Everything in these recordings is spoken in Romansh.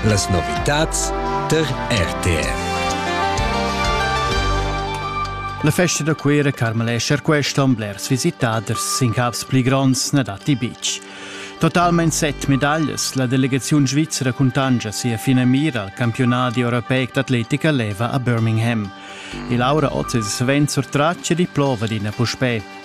Las novitads tar RTR. La festa da Cuera carmelescha questa blers visitaders sin cavs pli gronds na datti betg. Totalmain set medaglias la delegaziun svizra cuntanscha sia finamira al campionat europeic d'atletica leva a Birmingham. E Laura Oz è savens sur traccia di plova d'ina puspè.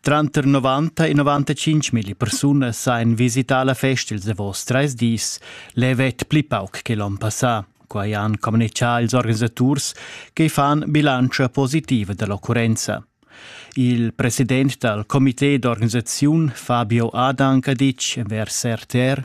Tranter 90 e 95 mil persunas ein visità la festa ils davos treis dis, levet pli pauc che l'onn passà. Quai han communichà ils organisaturs che fan bilantscha positiva dell'occurrenza. Il president dal comité d'organisaziun Fabio Adank ha ditg envers RTR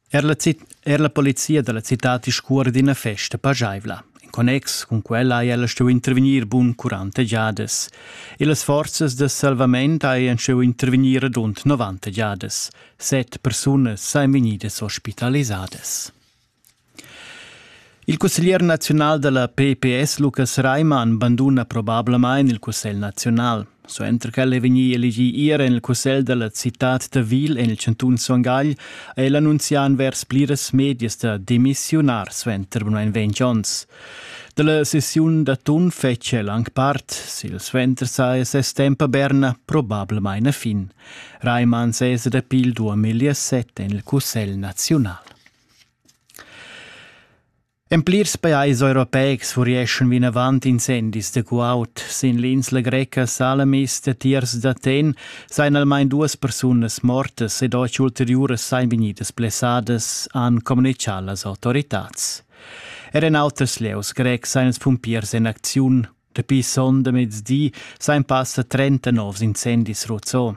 Er la, er la polizia da la citad discuora d'ina festa pajaivla. In connex cun quella ha ella stuì intervegnir bun 40 giadas. E las forzas da salvament hajan stuì intervegnir rund 90 giadas. Set persunas sajan vegnidas ospitalisadas. Il cusseglier naziunal da la PPS Lukas Reimann banduna probablamain il Cussegl naziunal. Suenter ch'el è vegnì elegì ier en il cussegl da la citad da Wil en il chantun Son Gagl, ha el annunzià envers pliras medias da demissiunar suenter main ventg onns. Dalla sessiun d'atun fetg el anc part, sil suenter sa e ses temp a Berna probablamain a fin. Reimann sesa dapi il 2007 en il Cussegl naziunal. En plirs pajais europeics furieschan vinavant incendis da guaud. Sin l'insla greca Salamis da tiers d'Aten sajan almain duas persunas mortas ed otg ulteriuras sajan vegnidas blessadas, han communitgà las autoritads. Er en auters lieus grecs sajan ils pumpiers en acziun. Dapi sonda mezdi sajan passa 30 novs incendis ruzzò.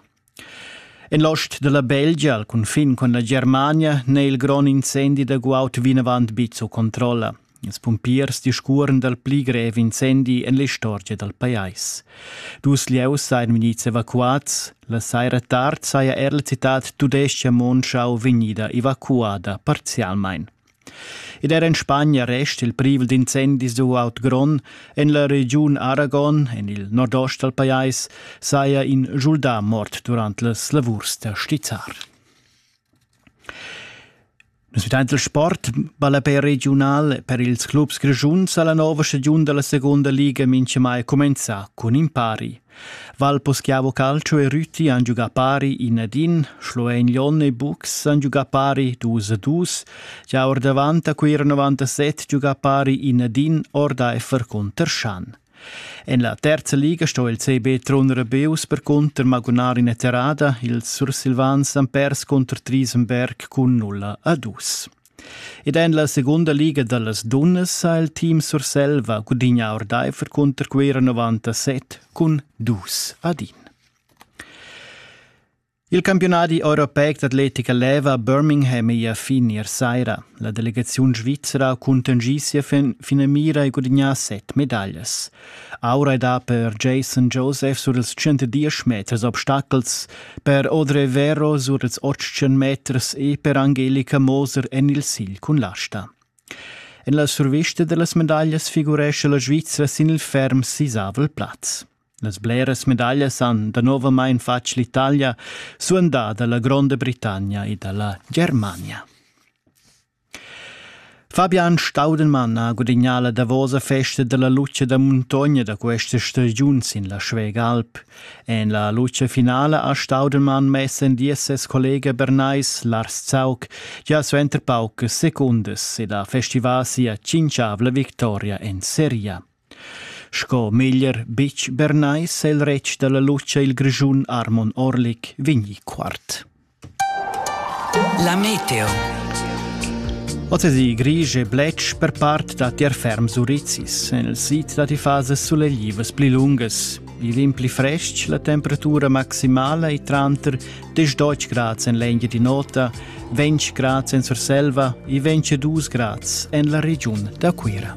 En l'ost da la Belgia, al cunfin cun la Germania, n'è il grond incendi da guaud vinavant be sco controlla. Ils pumpiers discurren dal pli grev incendi en l'istorgia dal pajais. Dus lieus sajan vegnids evacuads. La saira tard saja er la citad tudestga Monschau vegnida evacuada parzialmain. Ed er en Spagna resta il privel d'incendis uaut grond en la regiun Aragon, en il nordost dal pajais, saja in schuldà mort durant las lavurs da stizzar. Nus vitaint il sport ballapè regiunal per ils clubs grischuns alla nova stagiun dalla seconda liga mincha mai cumenzà cun impari. Val Poschiavo Calcio e Rüti han giugà pari in ad in, Schloen Lyon e Bux han giugà pari dus a dus, gia ordavant a Cuira 97 giugà pari in ad in ordaifer cunter Schan. En la terza liga sto il CB Trun Rebeus percunter magunar ina terrada, ils Sursilvans han pers cunter Triesenberg cun 0 a 2. Ed en la segunda liga da las dunnas ha il team Surselva gudignà ordaifer cunter Cuira 97 cun dus ad in. Il campiunadi europeic d'atletica leva a Birmingham è a fin ier saira. La delegaziun svizra ha cuntanschì sia finamira e gudignà set medaglias. Aura ei da per Jason Joseph sur ils 110 meters obstacels, per Audrey Vero sur ils 80 meters e per Angelika Moser en il sigl cun l'asta. En la survista dellas medaglias figurescha la Svizra sin il ferm sisavel plaz. Las bleras medaglias han danovamain fatg l'Italia, suandada la Gronda Britannia e dalla Germania. Fabian Staudenmann ha gudagnà la davosa festa dalla lutscha da muntogna da questa stagiun sin la Schwägalp. En la lutscha finala ha Staudenmann mess en dies ses collega bernais Lars Zaug gia suenter paucas secundas ed ha festivà sia tschintgavla victoria en seria. Sco meglier betg bernai s'ha il retg dalla lutscha il Grischun Armon Orlik vegni quart. La meteo. Oz grisch e bletsch per part dat tier ferm surizis. En il sid dat i fases suleglivas pli lungas. Il im pli frestg, la temperatura maximala è tranter 10 grads en l'engia di nota, 20 grads en Surselva e 22 grads en la regiun da Cuira.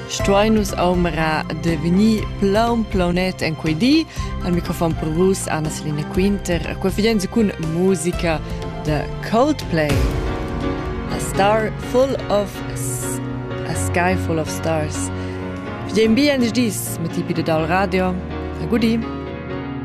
stuein nus aumera de vegnir plaun plaunet en quei di. Al microfon per vus Anna Selina Quinter, qua fidenza cun musica de Coldplay. A Star Full of A Sky Full of Stars. Fidem bien dis mit tipi de dal radio. A gudi.